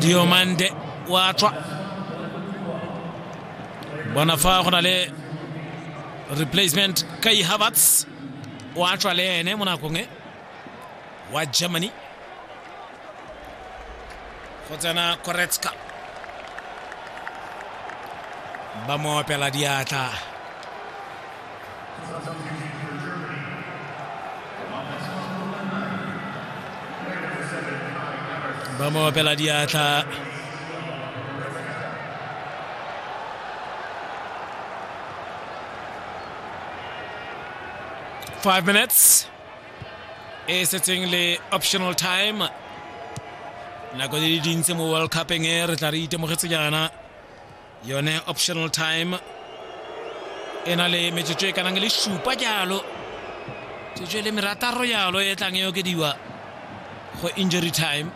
diomande wa tswa bona fa go na le replacement kai havertz wa tswa le ene mo nakong e wa germany go tsena koretska ba mo opela diatla ba mo opela diatla five minutes e setseng le optional time nako di le dintsi mo world cupeng e re tla re itemogetse jaana yone optional time e na le metsotso e kanang le supa jalo tsotso e le merataro jalo e tlang e okediwa go injury time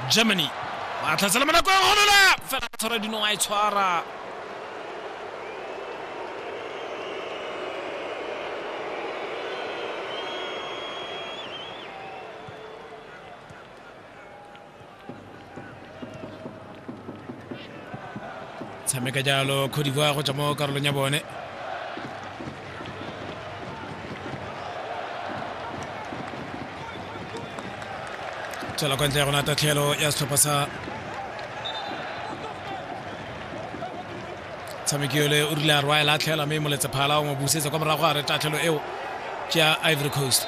germany ba tlhatsela monako e golola fela tshwara dino a e tshwara tshameka jalo cote d'ivoire go tswa mo karolong ya bone tswela kwa ntle ya gona tatlhelo ya setlhopha sa tshameki yole o rile a rwa e latlhela mme moletse phala o mo busetsa kwa morago a re tatlhelo eo ke ya ivory coast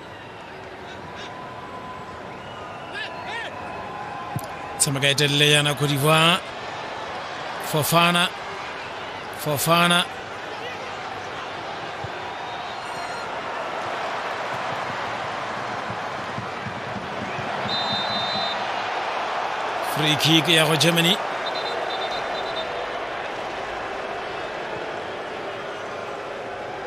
tshameka e telele yana Cote d'Ivoire Fofana Fofana free kick ya go Germany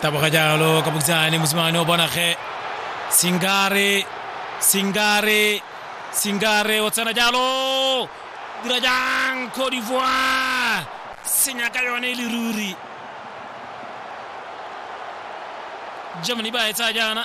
taboga jalo ka bokisanane mosimane o bona ge singare singare singare o tsena jalo dira jang cote d'ivoire senya ka yone e le ruri germany ba e tsaya jaana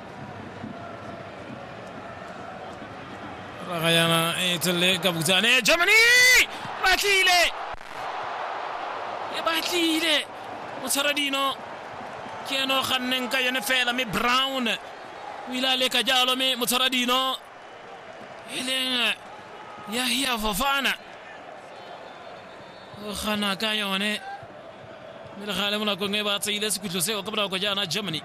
Ragayana e tswelele ka butsane Germany ba tlile e ba tlile o tshwara dino ke ene o ganneng ka yone fela mme brown o ile a leka jalo mme motshwara dino e leng yahia fofana o gana ka yone mme le gale mo nakong e ba tseile sekhutlho seo ka bonako jaana germany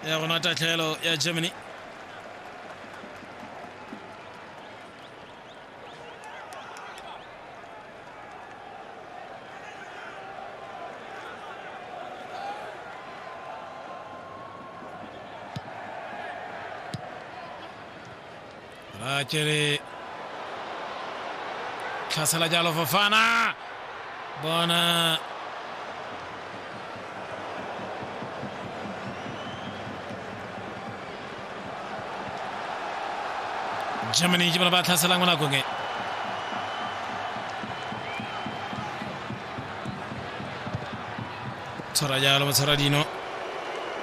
ya go na tatlhelo ya germany ra tswele tlhasela jalo fofana bona germany ke bona ba tlhaselang mo nakong e tshwara jalo motshwara dino